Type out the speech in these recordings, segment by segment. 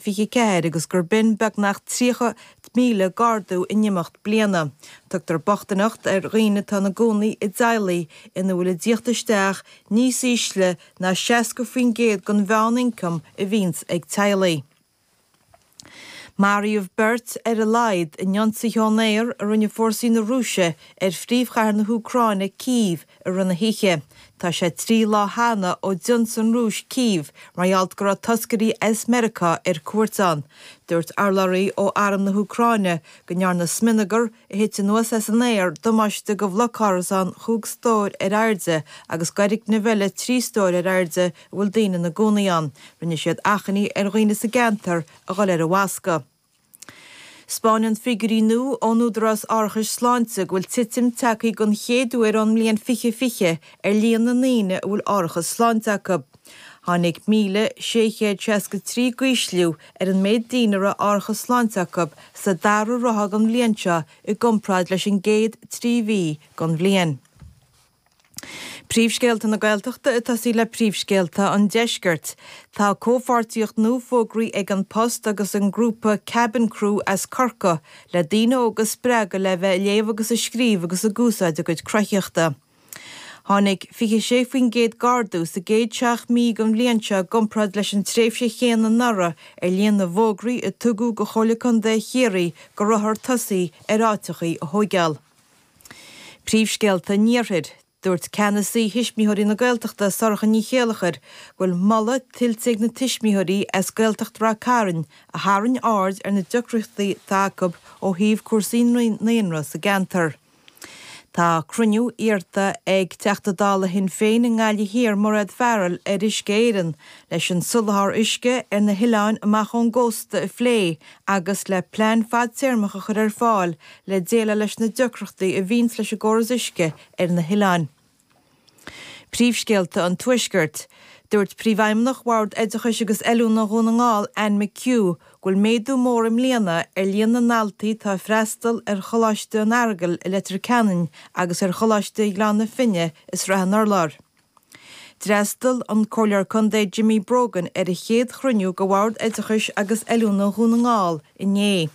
24 agus gurb in beagnach 30,000 d'ardú in imeacht bliana. Tugtar bochtaineacht ar dhaoine atá ina gcónaí i dteaghlaigh ina bhfuil a dtíocht isteach níos ísle ná 60% den mheánioncam a bhíonns ag teaghlaigh. Maraíodh beirt ar a laghad in ionsaithe ón aer a rinne fórsaí na Rúise ar phríomhchathair na hÚcráine, Cív, i rith na hoíche. Tá sé trí lá cheana ó d'ionsaigh an Rúis Cív mar gheall go raibh toscairí as Meiriceá ar cuairt ann. Dúirt urlabhraí ó arm na hÚcráine go ndearna smionagar a thit anuas as an aer damáiste go bhloc árasán chúig stór ar airde agus d'fhoirgneamh eile trí stór ar airde a bhfuil daoine ina gcónaí ann. Rinne siad achainí ar dhaoine sa gceantar a dhul ar an bhfascadh. 'spáineann figiúirí nua ón Údarás Árachais Sláinte go bhfuil titim tagtha den chéad uair ón mbliain 2020 ar líon na ndaoine a bhfuil árachas sláinte acu. Tháinig 1,663 d'ísliú ar an méid daoine a raibh árachas sláinte acu sa dara ráithe den bhliain seo i gcomparáid leis an gcéad trí mhí den bhliain. Príomhscéalta na Gaeltachta ag tosaí le príomhscéalta an Deiscirt. Tá comhpháirtíocht nua fógraithe ag An Post agus an grúpa Kabin Crew as Corcaigh le daoine óga a spreagadh le bheith ag léamh agus ag scríobh agus ag úsáid a gcuid cruthaitheachta. Tháinig 26% d'ardú sa gcéad seacht mí den bhliain seo i gcomparáid leis an tréimhse chéanna anuraidh ar líon na bhfógraí a tugadh go Chomhairle Contae Chiarraí go rabhthar ag tosaí ar áiteachaí a thóigeáil. Príomhscéalta an Iarthair. Dúirt Ceannasaí Thuismitheoirí na Gaeltachta, Sorcha Ní Chéilleachair, go bhfuil moladh tuillte ag na tuismitheoirí as Gaeltacht Ráth Chairn a tharraing aird ar na deacrachtaí atá acu ó thaobh cúrsaí naíonra sa gceantar. Tá cruinniú iarrta ag Teachta Dála Shinn Féin i nGaillimh Thiar, Mairéad Farrell, ar Uisce Éireann leis an soláthar uisce ar na hoileáin amach ón gcósta a phlé agus le plean fadtéarmach a chur ar fáil le déileáil leis na deacrachtaí a bhíonns leis an gcóras uisce ar na hoileáin. Príomhscéalta an Tuaiscirt. Dúirt Príomhfheidhmeannach Bhord Oideachais agus Oiliúna Dhún na nGall, Anne McHugh, go bhfuil méadú mór i mbliana ar líon na ndaltaí atá ag freastal ar Choláiste an Earagail i Leitir Ceanainn agus ar Choláiste Ghleann na Finne i Sraith an Urláir. D'fhreastal an Comhairleoir Contae Jimmy Brogan ar a chéad chruinniú de Bhord Oideachais agus Oiliúna Dhún na nGall inné.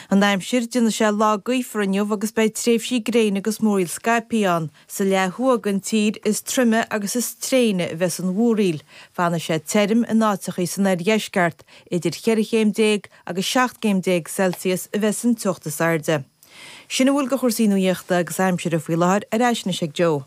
An aimsir, déanfaidh sé lá gaofar inniu agus beidh tréimhsí gréine agus múraíl scaipthe ann. Sa leath thuaidh den tír is troime agus is tréine a bheas an mhúraíl. Fanfaidh sé tirim in áiteachaí san oirdheisceart. Idir cheithre chéim déag agus seacht gcéim déag Celsius a bheas an teocht is airde. Sin a bhfuil de chúrsaí nuaíochta agus aimsire faoi láthair, ar ais anois ag Joe.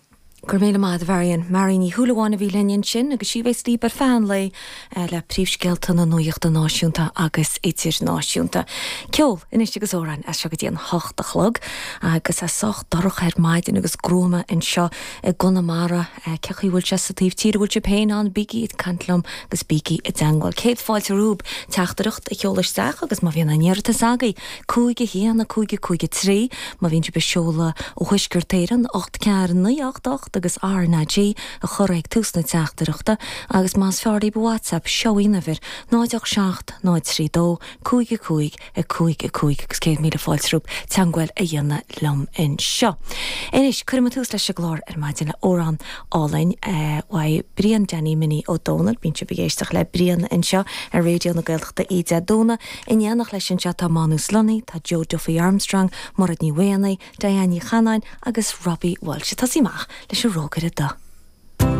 Go raibh míle maith ag do Mháirín. Máire Ní Shúilleabháin a bhí linn ansin agus sí a bheas libh ar feadh an lae le príomhscéalta na nuachta náisiúnta agus idirnáisiúnta. Ceol, anois agus amhráin as seo go dtí an hocht a chlog. Agus tá sé sách dorcha ar maidin agus gruama anseo i gConamara. Cé chaoi a bhfuil sé sa taobh tíre a bhfuil sibh féin ann? Bígí ag caint liom agus bígí i dteangmháil. Céad fáilte romhaibh teachtaireacht a sheoladh isteach agus má bhíonn aon iarratas agaibh, Cúig a haon, a cúig, a cúig a trí, má bhíonn sibh ag seoladh ó Thuaisceart Éireann, ocht, ceathair, naoi, ocht, ocht agus RnaG a chur ag tús na teachtaireachta agus más fearr libh WhatsApp, seo í an uimhir, 0 8 7 0 3 2 5 5 5 5 agus céad míle fáilte romhaibh teangmháil a dhéanamh liom anseo. Anois, cuirfidh muid tús leis an gclár ar maidin le amhrán álainn uaidh Brian Danny Minnie Ó Domhnaill. Bíonn sibh ag éisteacht le Brian anseo ar Raidió na Gaeltachta Oíche Dé Domhnaigh. In éineacht leis anseo tá Mánus Lunny, tá Joe Duffy Armstrong, Mairéad Ní Mhaonaigh, Diane Ní Chanainn agus Robbie Walsh. Ag tosaí amach leis an rógaire dubh.